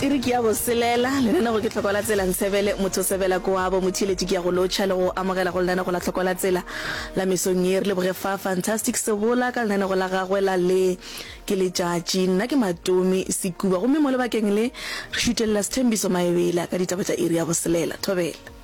Iri ke ya boselela, lenaneo ke Tlhoko la Tsela Nsebele Motho Sebela Koabo Motheeletši ke ya go lotšha le go amogela go lenaneo la Tlhoko la Tsela la mesong ye. Re leboge Fa Fantastic Sebola ka lenaneo la gagwe la Le ke Letšatši. Nna ke Matomi Sekuba gomme mo lebakeng le re šutelela Sethembiso Maebela ka ditaba tša iri ya boselela. Thobela.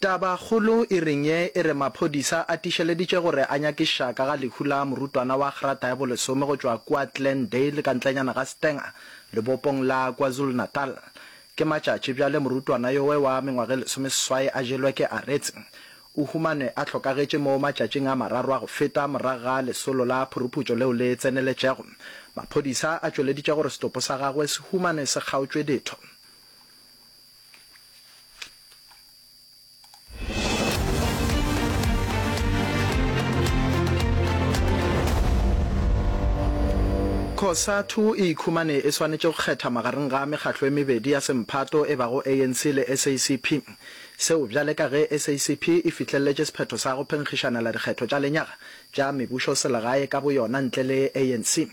Tabakgolo e reng ye e re maphodisa a tišeleditše gore a nyakiša ka ga lehu la morutwana wa grata ya bolesome go tšwa kua Glendale ka ntlenyana ga Stanger, lebopong la KwaZulu-Natal. Ke matšatši bjale morutwana yowe wa mengwaga e lesomeseswai a jelwe ke aretse. O humanwe a hlokagetše mo matšatšing a mararo a go feta morago ga lesolo la phuruputšo leo le tseneletšego. Maphodisa a tšweleditše gore setopo sa gagwe se humanwe se kgaotšwe ditho. Cosatu e ikhumane e swanetše go kgetha magareng ga mekgatlo e mebedi ya semphato e bago ANC le SACP. Seo bjale ka ge SACP e fihlelletše sephetho sa go phenkgišanela dikgetho tša lenyaga tša mebušoselegae ka boyona ntle le ANC.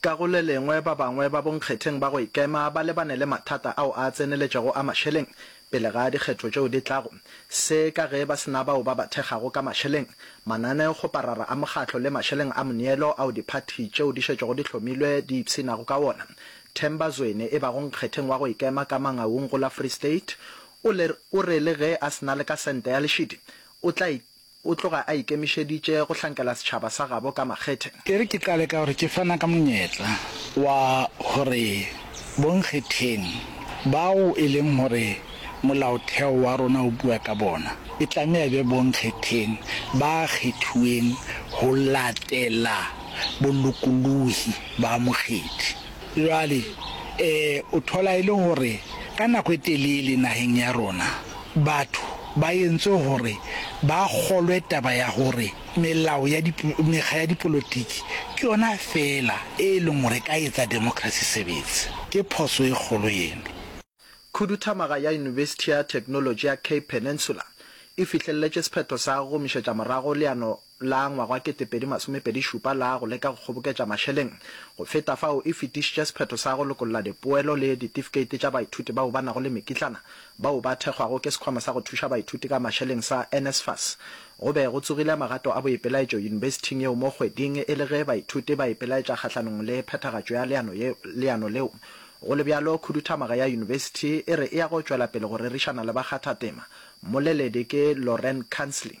Ka go le lengwe, ba bangwe ba bonkgetheng ba go ikema ba lebane le mathata ao a tseneletšego a mašeleng pele ga dikgetho tšeo di tlago. Se ka ge ba se na bao ba ba thekgago ka mašeleng, mananeo, kgoparara a mokgatlo le mašeleng a moneelo ao diphathi tšeo di šetšego di hlomilwe di ipsinago ka wona. Themba Zweni, e bago nkgetheng wa go ikema ka Mangaung go la Free State, o le, o re le ge a se na le ka sente ya lešidi, o tla O tloga a ikemišeditše go hlankela setšhaba sa gabo ka makgethe. E re ke qale ka gore ke fana ka monyetla wa gore bonkgetheng bao e leng gore Molaotheo wa rona o bua ka bona, e tlameha e be bonkgetheng ba kgethiweng go latela bolokolohi ba mokgethi. Bjale, e, o thola e le gore ka nako e telele nageng ya rona batho ba yentswe gore ba kgolwe taba ya gore melao ya dip, mekga ya dipolotiki ke yona feela e leng gore e ka etsa democracy sebetse. Ke phoso e kgolo yeno. Khuduthamaga ya Yunibesithi ya Theknolotši ya Cape Peninsula e fihlelletše sephetho sa go gomišetša morago leano la ngwaga wa ketepedi masomepedi šupa la go leka go kgoboketša mašeleng go feta fao e fetišitše sephetho sa go lokolla dipoelo le ditifikeiti tša baithuti bao ba nago le mekitlana bao ba thekgwago ke Sekhwama sa go Thuša Baithuti ka Mašeleng sa NSFAS. Go be go tsogile magato a boipelaetšo yunibesithing yeo mo kgweding e le ge baithuti ba ipelaetša kgahlanong le phethagatšo ya leano leano leo. Go le bjalo, khuduthamaga ya yunibesithi e re e ya go tšwela pele go rerišana le bakgathatema. Mmoleledi ke Lorraine Kansley.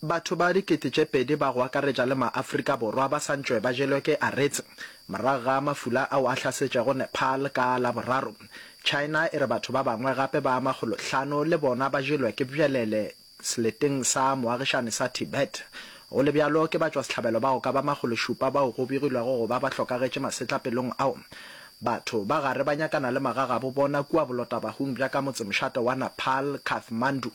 Batho ba dikete tše pedi ba go akaretša le maAfrika Borwa ba sa ntšwe ba jelwe ke aretse morago ga mafula ao a hlasetšego Nepal ka Laboraro. China e re batho ba bangwe gape ba makgolo hlano le bona ba jelwe ke bjelele seleteng sa moagišane sa Tibet. Go le bjalo ke batšwasehlabelo ba go ka ba makgolo šupa bao go begilwego go ba ba hlokagetše masetlapelong ao. Batho ba gare ba nyakana le magagabo bona kua bolotabahung bja ka motsemošate wa Nepal, Kathmandu.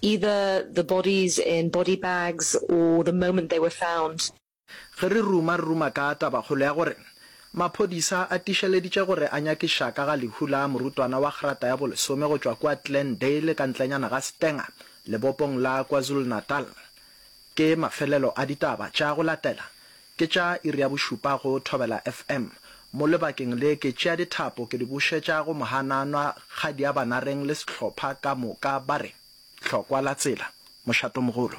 Either the bodies in body bags or the moment they were found. Ge re ruma re ruma ka tabakgolo ya gore maphodisa a tišeleditše gore a nyakiša ka ga lehu la morutwana wa grata ya bolesome go tšwa kua Glendale ka ntlenyana ga Stanger, lebopong la KwaZulu-Natal. Ke mafelelo a ditaba tša go latela Ke tša iri ya bošupa go Thobela FM. Mo lebakeng le ke tšea dithapo ke di bušetša go Mohananwa, Kgadiabanareng le sehlopha ka moka ba re, Hlokwa la tsela, mošatomogolo.